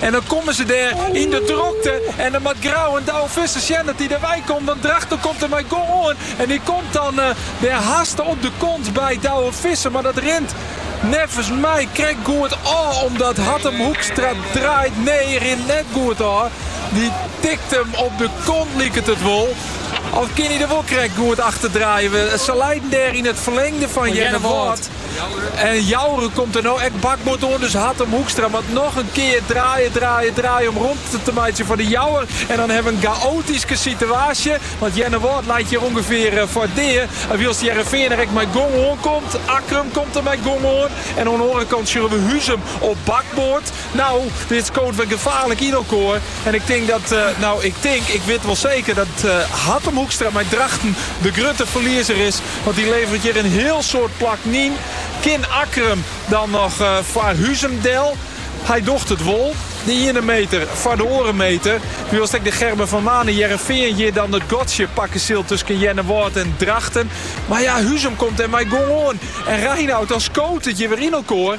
En dan kommen se dêr yn de drokte. En dan moat Grou en Douwe Visser sjen dat dy derwei komt. Want Drachten komt der mei gong oan. En dy komt dan uh, der haste op de kont by Douwe Visser. Maar dat rint neffens my krekt goed ôf. Omdat Hattum Hoekstra draait. Nee, rint net goed ôf. Dy tikt him op de kont, liket it wol. Of kin hy der wol krekt goed achter draaie? Se leiden dêr yn it ferlingde fan Earnewâld. En Jouwer komt der no ek bakboard oan, dus Hattum Hoekstra moat noch in kear draaie, draaie, draaie om romte te meitsjen foar De Jouwer. En dan hawwe we in gaoatyske sitewaasje, want Earnewâld leit hjir ûngefear foar dea. En wylst Hearrenfean der ek mei gong oan komt, Akkrum komt der mei gong oan en oan 'e oare kant sjoche we Huzum op bakboard. Nou, dit skoot wer gefaarlik yn elkoar. En ik tink dat, eh, nou, ik tink, ik wit wol seker dat eh, Hattum Hoekstra mei Drachten de grutte ferliezer is. Want dy leveret hjir in hiel soad plakken yn. Kin Akkrum dan noch eh, foar Huzum del? Hy docht it wol. De iene Meeter foar de oare Meeter. Wylst ek de Gerben van Manen Hearrenfean hjir dan it gatsje pakke sil tusken Earnewâld en Drachten. Mar ja, Huzum komt der mei gong oan. En Reinout, dan skoot it hjir wer yn elkoar.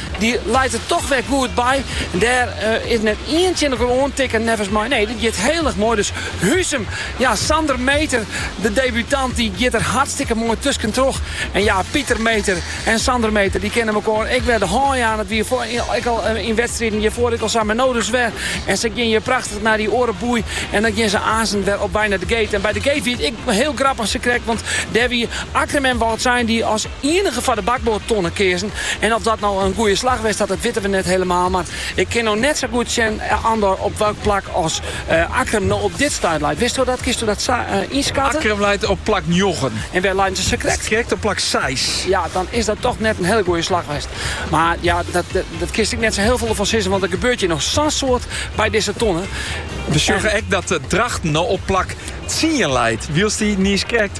Dy leit der toch wer goed by. Dêr is net ien tsjin elkoar oan tikken neffens my. Nee, dit giet heel erg moai. Dus Huzum, ja, Sander Meeter, de debutant, dy giet der hartstikke moai tusken troch. En ja, Pieter Meeter en Sander Meeter, dy kinne elkoar ek wer de hân jaan. It wie ek al yn wedstriden hjirfoar ek al sa, mar no dus wer. En sy gean hjir prachtich nei dy oare boei en dan gean se aansten wer op wei nei de gate. En by de gate wie it ek heel grappich, sakrekt, want dêr wie Akkrum wou it sein, dy as. ienige foar de bakboardtonne keazen. En oft dat no in goede slach west hat, dat witte we net helemaal. Mar ik kin no net sa goed sjen Andor op welk plak as Akkrum no op dit stuit leit. Witsto dat? Kinsto dat sa ynskatten? Akkrum leit op plak njoggen. En wêr leiden se sakrekt? Krekt op plak seis. Ja, dan is dat toch net in hele goede slach west. Mar ja, dat kinst ek net sa heel veel derfan sizzen, want der gebeurt hjir noch sa'n soad by dizze tonne. We sjogge ek dat Drachten no op plak tsien leit, wylst dy niiskrekt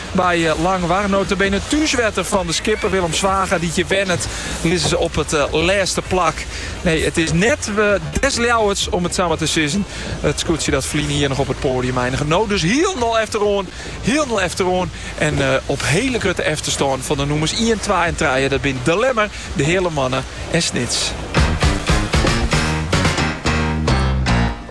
By Langwar nota bene thúswetter fan de skipper Willem Zwaga dy't hjir wennet, lizze se op it lêste plak. Nee, it is net des Ljouwerts om it sa mar te sizzen. It skûtsje dat ferline jier noch op it poadium einige, no dus hielendal efteroan. Hielendal efteroan en op hiele grutte efterstân fan de nûmers ien, twa en trije, dat binne De Lemmer, De Heale Moanne en Snits.